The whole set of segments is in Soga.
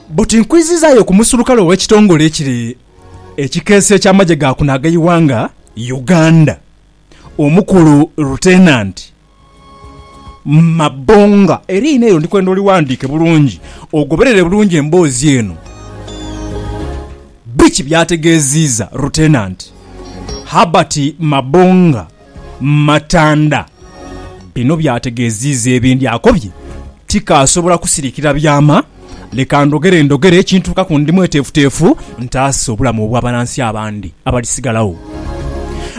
Buti nkwizizaayo ku musulukale ow'ekitongole ekiri ekikeesi eky'amagye ga kuno ag'eighanga Uganda, Omukulu Lutenanti Mabonga. Eriina eryo ndi kwenda olighandiike bulungi ogoberere bulungi emboozi eno. Biki by'ategeeziiza Lutenanti Herbert Mabonga? Matanda bino by'ategeeziiza ebindi akobye, Tikaasobola kusirikira byama, leka ndhogere ndhogere ekintuukaku ndi mweteefuteefu ntaase obulamu obw'abanansi abandi abalisigalawo.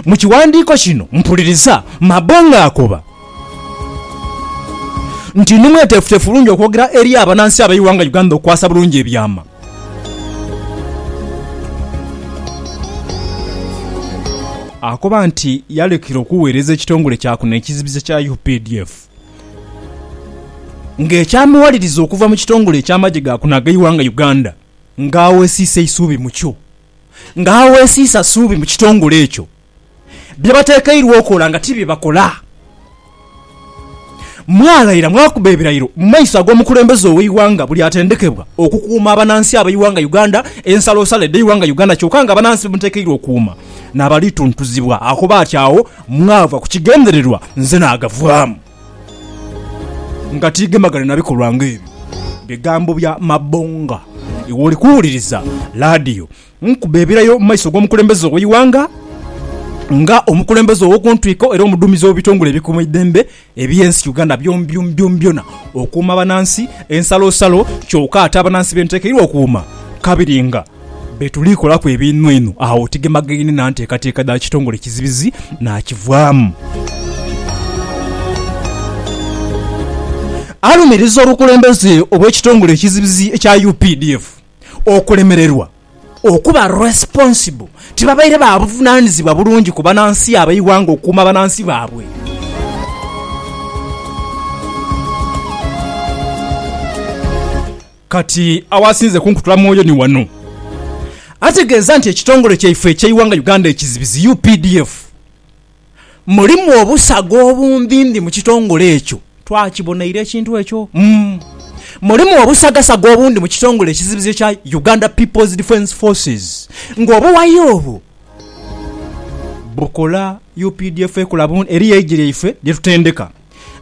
Mu kiwandiiko kino mpuliriza Mabo ng'akoba nti ndi mweteefuteefu bulungi okwogera eri abanansi ab'eighanga Uganda okukwasa bulungi ebyama. Akoba nti yalekera okuweereza ekitongole kya kuno ekizibizi ekya updf nga ekyamuwaliriza okuva mu kitongole eky'amagye ga kuno ag'eighanga Uganda nga awesiisa eisuubi mukyo nga awesiisa suubi mu kitongole ekyo. bye batekeirwa okola nga ti bye bakola. Mwalaira mwakuba ebirairo mu maiso ag'omukulembeze ow'eighanga buli atendekebwa okukuuma abanansi ab'eighanga Uganda ensalosalo edh'eighanga Uganda kyoka nga abanansi be mutekeirwa okuuma n'abalituntuzibwa akoba ati agho mwava ku kigendererwa nze naagavaamu nga tiigemagane na bikolwa nga ebyo. Bigambo bya Mabonga iwe oli kuwuliriza laadiyo. Nkube ebirayo mu maiso g'omukulembeze ow'eighanga nga omukulembeze ow'okuntwiko era omudhuumizi w'ebitongole ebikuuma eidembe eby'ensi Uganda byonbyona okuuma abanansi ensalosalo kyoka ate abanansi be ntekeirwa okuuma kabiri nga betuli kolaku ebinhweinhwe agho tigemagaine na nteekateeka dha kitongole kizibizi nakivaamu. Alumiriza obukulembeze obw'ekitongole ekizibizi ekya updf, okulemererwa okuba responsible, tibabaire ba buvunaanizibwa bulungi ku banansi ab'eighanga okukuuma banansi baabwe. Kati awasinze kunkutula mwoyo ni wano. Ategeeza nti ekitongole kyaife eky'eighanga Uganda ekizibizi, updf, mulimu obusaga obundhindhi mu kitongole ekyo. Twakibonaire ekintu ekyo. Mulimu obusagasaga obundhi mu kitongole ekizibizi ekya Uganda People's Defence Forces ng'obuwayi obwo bukola updf ekola bundi. Eriyo eigi lyaife lye tutendeka.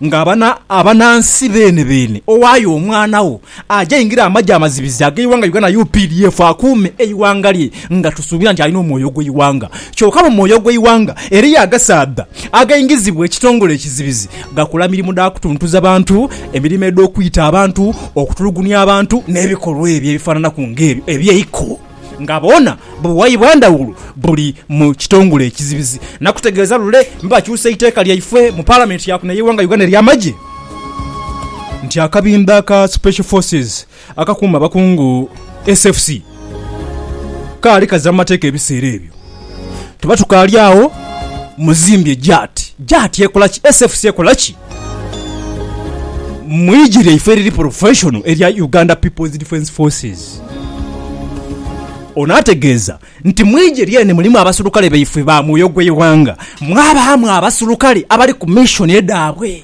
Nga abana, abanansi beene beene, owayo omwana wo aje aingire amagye amazibizi ageighanga Uganda updf akuume eighanga lye nga tusuubira nti alina omwoyo ogweighanga. Kyoka mu mwoyo ogweighanga eriyo agasaadha againgizibwa ekitongole ekizibizi gakola mirimu dha kutuntuza bantu, emirimo edhokwita abantu, okutulugunia abantu nebikolwa ebyo ebifananaku nga ebyo ebyeiko. nga bwona buwaibwa ndhawulo buli mu kitongole ekizibizi nakutegeeza lule bakyusa eiteeka lyaifwe mu Palamenti ya kuno eyeighanga Uganda erya magye nti akabinda aka Special Forces akakuuma abakungu, SFC, kaali kaza mu mateeka ebiseera ebyo. Tuba tukaali agho muzimbye JAT. JAT ekola ki? SFC ekola ki? Mu igi lyaife eriri porofeshono erya Uganda People's Defence Forces. Ono ategeeza nti mu igi lyeene mulimu abaserukale baifwe ba mwoyo gw'eighanga mwabaamu abaserukale abali ku mishoni edhaabwe.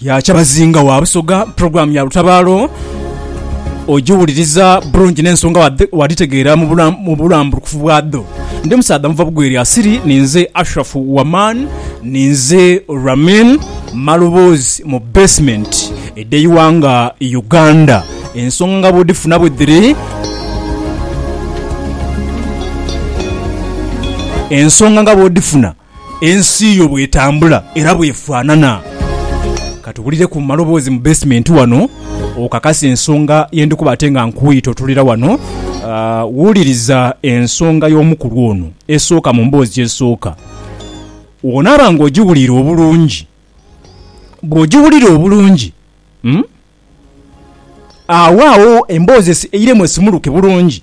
Ya Kyabazinga wa Busoga, Pulogulaamu ya lutabaalo ogiwuliriza bulungi n'ensonga wadhi- wadhitegeera mu bula- mu bulambulukufu bwadho. Ndi musaadha muva bugwere asiri, ninze Ashrafu Waman, ninze Ramin Maloboozi mu Basement. edh'eighanga Uganda. Ensonga nga bw'odhifuna bwe dhiri. Ensonga nga bw'odhifuna. Ensi yo bw'etambula era bw'efaanana. Ka tuwulire ku maloboozi mu beesimenti wano okakase ensonga ye ndi kuba ate nga nkuyita otuulira wano. Wuliriza ensonga y'omukulu ono esooka mu mboozi esooka. Bw'onaaba ng'ogiwuliire obulungi bw'ogiwulira obulungi, agho agho emboozi eiremu esimuluke bulungi.